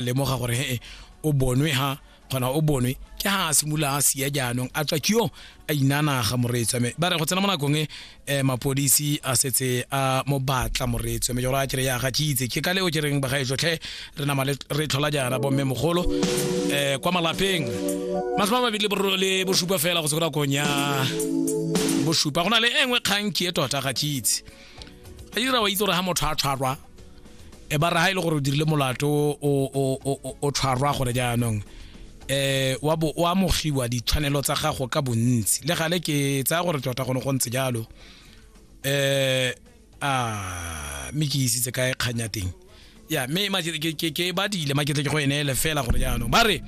lemoga gore he o bonwe ha kgona o bonwe ke ha a simolola a sia jaanong a tswa ke yo a inanaga moreetso mme ba re go tsena mo nakong e eh, mapodisi a setse a mo batla moreetso mme jalo a kere ya ga ke itse ke ka leo ke reng bagae jotlhe re nama le- re tlhola jaana bomme mogolo um kwa malapeng masome a mabedi le boro- le bosupa fela go se ko nakong ya bosupa go na le e nngwe kgang ke e tota ga ke itse a dira wa itse gore ga motho a tshwarwa e ba re ga e le gore o dirile molato o tshwarwa gore jaanong eh wa bo wa mogiwa ditshwanelo tsa gago ka bontsi le gale ke tsaya gore tota gone go ntse jalo eh a mme ke isitse kae kganya teng ya mme ma- ke- ke- ke- ke badile ma ketle ke go eneele fela gore jaanong ba re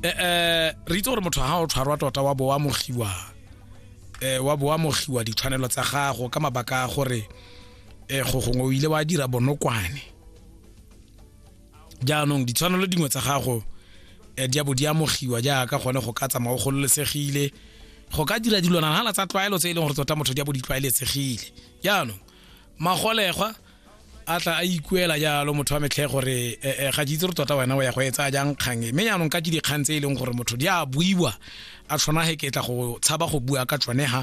eh, eh, re itse gore motho ga o tshwarwa tota wa bo wa mogiwa eh, wa bo wa mogiwa ditshwanelo tsa gago ka mabaka a gore eh, go gongwe o ile wa dira bonokwane jaanong ditshwanelo dingwe tsa gago eh, di a bo di amogiwa jaaka gone go ka tsamaya o gololesegile go ka dira dilwana nala tsa tlwaelo tse e leng gore tota motho di a bo di tlwaeletsegile jaanong magolegwa a tla a ikuela jalo motho wa metlhe gore eh, eh, ga ke itse re tota wena o ya go etsa jang kgang e mme jaanong ka ke dikgang tse e leng gore motho di a buiwa a tshwana ge ke tla go tshaba go bua ka tsone ga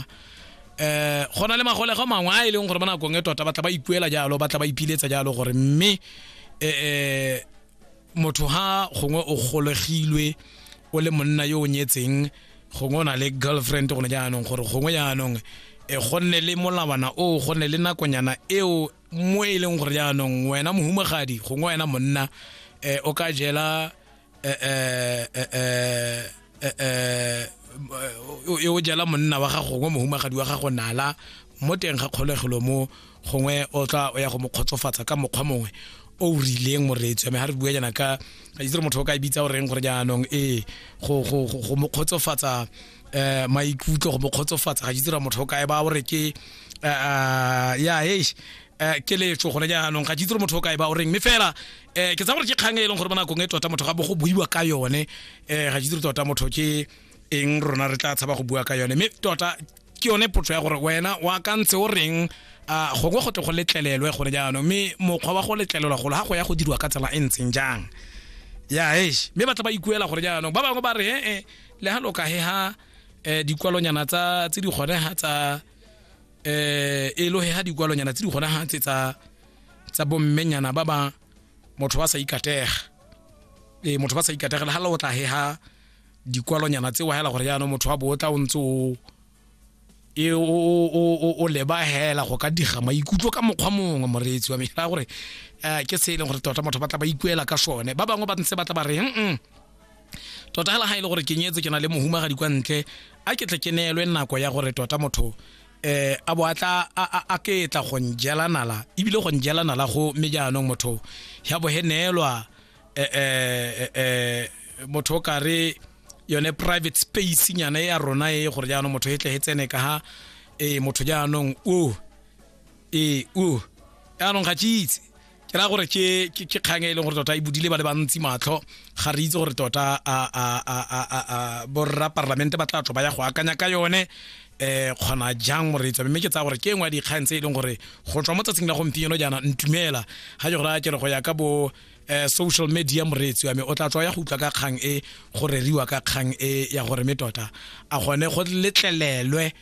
um go na le magolego mangwe a e leng gore ba nakong e tota ba tla ba ikuela jalo ba tla ba ipiletsa jalo gore mme um motho ha gongwe o golegilwe o le monna yo o nyetseng gongwe o na le girlfriend gone jaanong gore gongwe jaanong e gonne le molawana o gonne le nakonyana eo mo e leng gore jaanong wena mohumagadi gongwe wena monna um o ka jela um eh, eh, eh, o jela monna wa gago gongwe mohumagadi wa gago nala mo teng ga kgolegelo mo gongwe o tla o ya go mo kgotsofatsa ka mokgwa mongwe o o rileng moreetso ame ga re bua jaana ka a itse re motho o ka e bitsa o reng gore jaanong ee go mo kgotsofatsa um maikutlo go mo kgotsofatsa ga itse ra motho o kae ba o re ke ya e um keletso gone jaanong ga ke itse gore motho o kae ba o reng mme fela um ke tsa gore ke kgang e leng gore mo nakong e tota motho ga bo go buiwa ka yone um ga ke itse gore tota motho ke eng rona re tla tshaba go bua ka yone mme tota ke yone potso ya gore wena wa ka ntse o reng a gongwe go tle go letlelelwe gone jaanong mme mokgwa wa go letlelelwa golo ga go ya go dirwa ka tsela e ntseng jang ya esh mme ba tla ba ikuela gore jaanong ba bangwe ba re ee le ga loka he ga um dikwalonyana tse di kgone ga tsa eh e lohe ha dikwalonyana tse di gona ha tse tsa tsa bommenyana ba ba motho ba sa ikatega e motho ba sa ikategela ha la o tla he ha dikwalonyana tse wa hela gore yana motho wa botla o ntse o e o o o leba hela go ka diga maikutlo ka mokgwa mongwe moreetsi wa mehla gore eh, ke se e leng gore tota motho ba tla ba ikuela ka sone ba bangwe ba ntse ba tla ba re mm tota hela ha e le gore ke nyetse ke na le mohumagadi kwa ntle a ke tle ke neelwe nako ya gore tota motho eh a bo atla a ke tla go njela nala ebile go njela nala go mme jaanong motho ya bo he neelwa eh eh, eh, eh motho ka re yone private space nyana ya rona e gore jaanong motho e tle e tsene ka ha e motho jaanong o e o jaanong ga ke itse ke ra gore ke ke ke kgang e leng gore tota e budile ba le bantsi matlho ga re itse gore tota a a a a a a borra parlamente ba tla tlo ba ya go akanya ka yone eh kgona jang moreetsa mme ke tsaya gore ke engwe ya dikgang tse e leng gore go tswa mo tsatsing la gompieno jaana ntumela ga ke gore a ke re go ya ka bo eh, social media moreetsi wa me o tla tswa ya go utlwa ka kgang e go reriwa ka kgang e ya gore me tota a gone go letlelelwe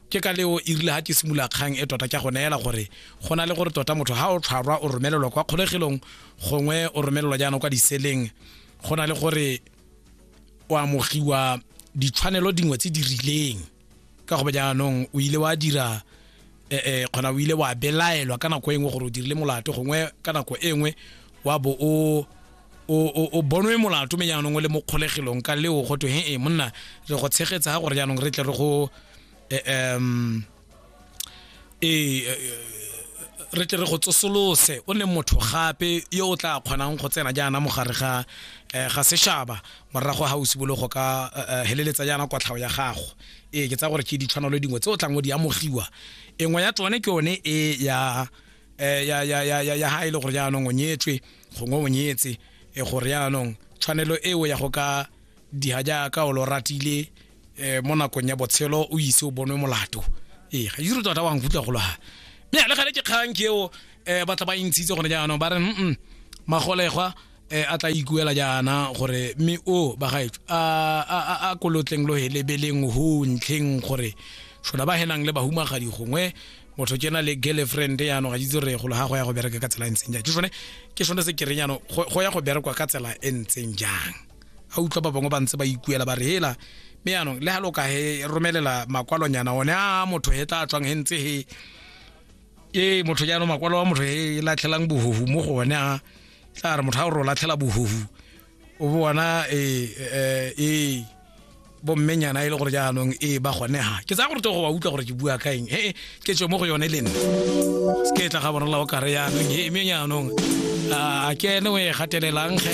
ke ka leo e rile ga ke simolola kgang e tota ke go neela gore go na le gore tota motho ga o tshwarwa o romelelwa kwa kgolegelong gongwe o romelelwa jaanong kwa diseleng go na le gore o amogiwa ditshwanelo dingwe tse di rileng ka go jaanong o ile wa dira eh, eh, kgona o ile wa belaelwa ka nako e nngwe gore o dirile molato gongwe ka nako e nngwe wa bo o o o- o bonwe molato me jaanong o le mo kgolegelong ka leo go twe he e monna re go tshegetsa ga gore jaanong re tle re go eh, em, ee eh, re tle re go tsosolose o ne motho gape yo o tla kgonang go tsena jaana mogare ga eh, ga sešaba morago ga o simolo go ka eh, eh, heleletsa jaana kwatlhao ya gago ee ke tsa gore ke ditshwanelo dingwe tse o tlang o di amogiwa engwe ya tsone ke yone e ya eh, ya ya ya ya ya ha e le gore jaanong o nyetswe gongwe o nyetse e gore yaanong tshwanelo eo ya go ka diha jaaka o lo ratile um mo nakong ya botshelo o ise o bonwe molato ee ga ise tota wa nkutlwa golo ga mme le gale ke kgang ke eo um ba tla ba intshitse gone jaanong ba re mm magolegwa um a tla ikuela jaana gore mme o ba gaetso a kolotleng lo helebeleng ho ntlheng gore shola ba henang le bahumagadi gongwe motho ke na le girlfriend yano ga ke itse re golo ga go ya go bereka ka tsela e ntseng jang ke sone ke sone se kereng yano go ya go berekwa ka tsela e ntseng jang a utlwa ba bangwe ba ntse ba ikuela ba re hela mme yanong le ga lo ka he romelela makwalonyana one a motho he tla tswang he ntse he ke motho jaanong makwalo wa motho he latlhelang bohohu mo go one a tla re motho a o re o latlhela bohohu o bona ee eh, ee bommenyana e le gore jaanong ee ba gonega ke tsaya gore togo wa utlwa gore ke bua ka eng ee ke tswe mo go yone le nna se ke tla ga bonala o kare jaanong ee mme jaanong a ke ene o e gatelelang ge